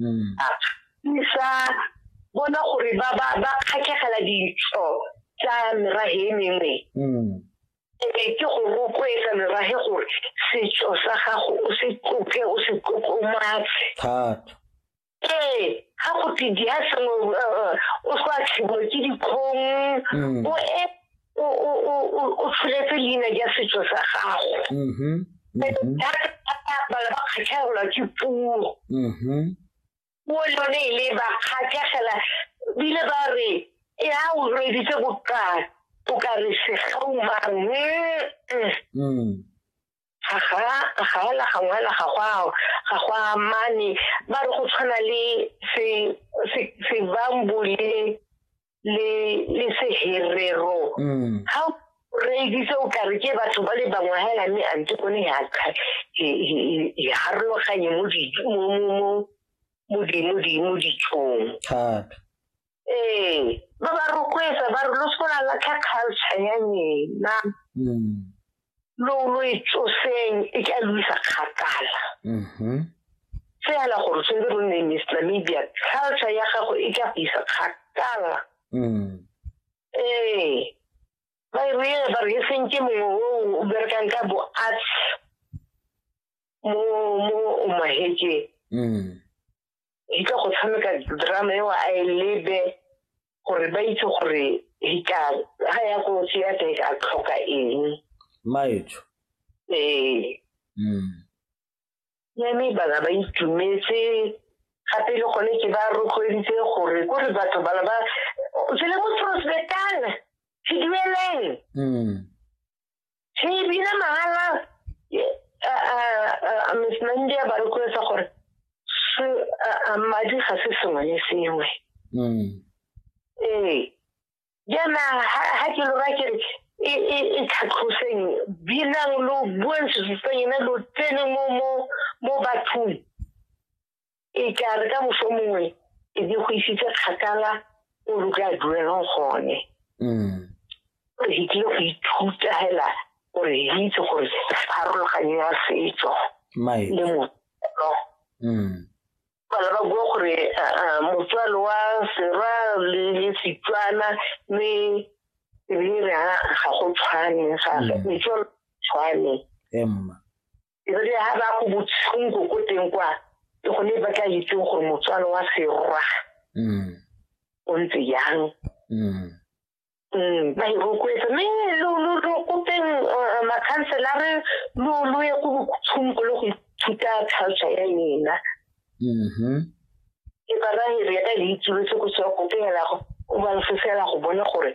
mm. a ne sa bona gore ba ba ba kgakegela ditso tsa merage e mengwe mm. ebe ke go rotloetsa merage gore setso sa gago o se tloke o se tlotlomatse thata ee ga go tse di a sengwe eh, eh, o sa tshibo ke dikgong mm. o e o tsholetse leina ja setso sa gago mm-hmm. Mm-hmm. bala ba kgatlhegelwa ke puo mm-hmm. puo le yone e le ba kgatlhegela bile ba re e a o reditse bokana o ka re segaumang mm. ga ga ga la gangwe la ga gwa ga gwa mane ba re go tshwana le se se se bambu le le le se herero mm. ha re itse o ka re ke batho ba le bangwe ha la me a ntse kone ya ka e harologanye mo di mo mo mo mo di mo di mo di tshong thata ee ba ba rotloetsa ba re lo se la latlha culture ya lena mm. lo lo e tsoseng e ka lo isa kgakala mm-hmm. fela gore tshwanetse lo nne miss namibia culture ya gago e ka go isa kgakala mm. ee ba e re ba re e seng ke mongwe o berekang ka bo arts mo mo o mahekeng mm. di tla go tshameka drama eo a e lebe gore ba itse gore ga ya ko theater e ka tlhoka eng maetso ee hmm. yame bana ba itumetse gape le gone ke ba rotloeditse gore ko re batho bana ba tsele mo prospectana se dueleng hmm. He bile mahala a Miss Nandi a ba rotloetsa gore madi ga se sengwe le sengwe. Mm. Ee. Jaana ha ke lora ke re e, e, e tlhatlhoseng binang lo bueng sesutsang ene lo tsene mo mo mo bathong e ka re ka moso mongwe e di go isitse kgakala o re ka duelang gone mm. gore ke tlile go ithuta hela gore ke itse gore pharologanyo ya setso le motswalo mm. bana ba bua gore motswalo wa sera le setswana mme ebile re ga go tshwane gape mm. metswalo tshwane emma ebile ha ba go botshunko ko teng kwa ke gone ba tla itseng gore motswalo wa serwa mm. o ntse yang mm. Mm, ba e rotloetsa mme lo kopeng uh, makhanselare lo lo ye ko botshunko le go ithuta culture ya ena mm-hmm. ke ba ra e re ya ka le itsuletse ko sewa kopeng la go o ba lefosela go bone gore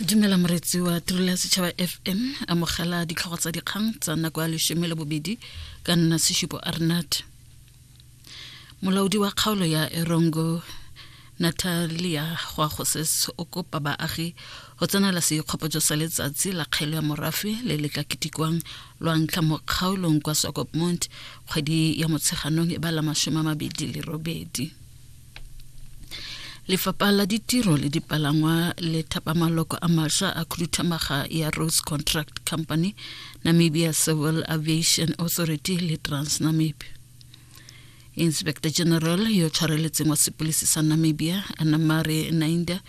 dumela moretsi wa tirelo ya setšhaba fm amogela ditlhogo tsa dikgang tsa nako ya leshome le bobedi ka nna seshupo arnat molaodi wa kgaolo ya erongo natalia goagoses o kopa baagi go tsenela seikgopotso sa letsatsi la kgelo ya morafe le le ka ketikwang lwa ntlha mo kgaolong kwa sokopmont kgwedi ya motsheganong e ba la masome a mabedi le robedi lefapha la ditiro le dipalangwa le thapa maloko a masha a khuduthamaga ya rose contract company namibia civil aviation authority le transnamib inspector general yo tshwareletseng wa sepolisi sa namibia anamare nainda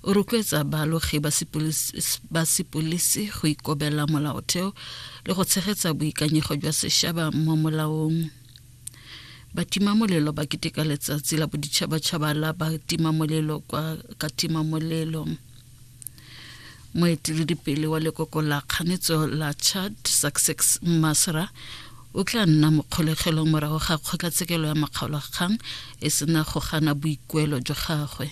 o rotloetsa baalogi ba sepolisi go ikobela molaotheo le go tshegetsa boikanyego jwa sešaba mo molaong batimamolelo ba keteka letsatsi la boditšhabatšhaba la batimamolelo kwa katimamolelo moeteledipele wa lekoko la kganetso la chad success masra o tla nna mokgolegelo morago ga kgotlatshekelo ya makgaolakgang e sena go gana boikuelo jwa gagwe